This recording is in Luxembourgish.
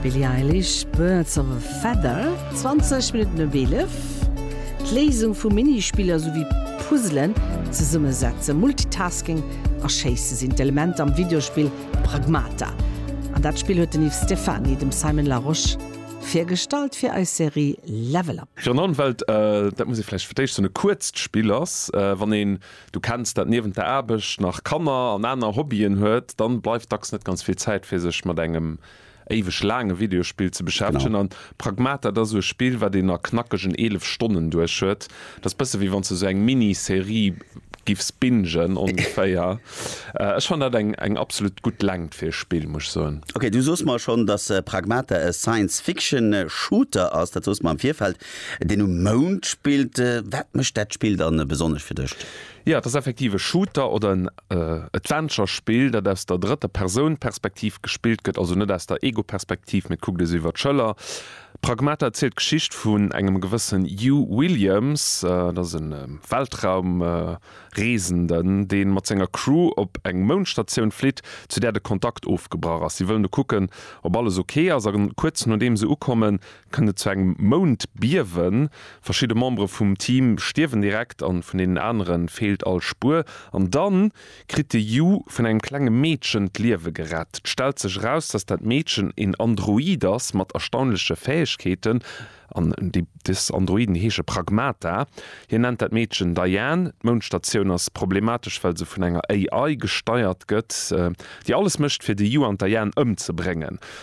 Billie Eilish, Birds of a Feather. 20 Minutten op 11, D'Léisung vu Minispiller souwéi Puzzelen, d'Zesummesetze, Multitasking a Schéisse sinn d'Elementer am Videospill Pragmata. An dat Spill huet den Yves Stephany dem Simon Larosche virgestallt fir eis Serie Level Up. Fir an allen Welt, dat muss ee vläicht fir d'éischt soen, e kuerzt Spill ass. Wann ee Du kenns dat, niewent der Aarbecht nach Kanner an aner Hobbyen huet, dann bleift dacks net ganz vill Zäit fir sech mat engem éiweg laange Videospill ze beschäftegen an Pragmata dat ass sou e Spill wat een a knackegen 11 Stonnen duerch huet. Dat ass bësse wéi wanns de sou eng Mini-Serie giffs bingen ongeféier. Ech fannen dat eng eng absolut gutt Längt fir e Spill muss ech soen. Ok, du soos mer schonn dass Pragmata e Science-Fiction Shooter ass, dat soos mer am Virfeld. Deen um Mound spillt, wat mécht dat Spill dann besonnesch fir dech? Jo, et ass effektiv e Shooter oder en Adventure-Spill, dat aus der drëtter Persoun Perspektiv gespillt gëtt, also net aus der Ego-Perspektiv, mee et kuckt ee sou iwwer d'Schëller. Pragmata erzielt d'Geschicht vun engem gewëssen Hugh Williams, dat ass e Weltraumreesenden, dee mat senger Crew op eng Moundstatioun flitt, zu där de Kontakt ofgebrach ass. Si wëllen do kucken, ob alles ok ass, a kuerz nodeem se ukommen, kënnt et zu engem Moundbiewen. Verschidde Membere vum Team stierwen direkt an vun deenen anere feelt all Spuer. An da kritt de Yu vun engem klenge Meedchen d'Liewe gerett. Et stellt sech eraus, dass dat Meedchen een Android ass mat erstaunleche Fäegkeeten. An des Androiden heesche Pragmata. Hien nennt dat Meedchen Diane. D'Moundstatioun ass problematesch, well se vun enger AI gesteiert gëtt, déi alles mécht, fir de Yu an d'Diane ëmzebréngen.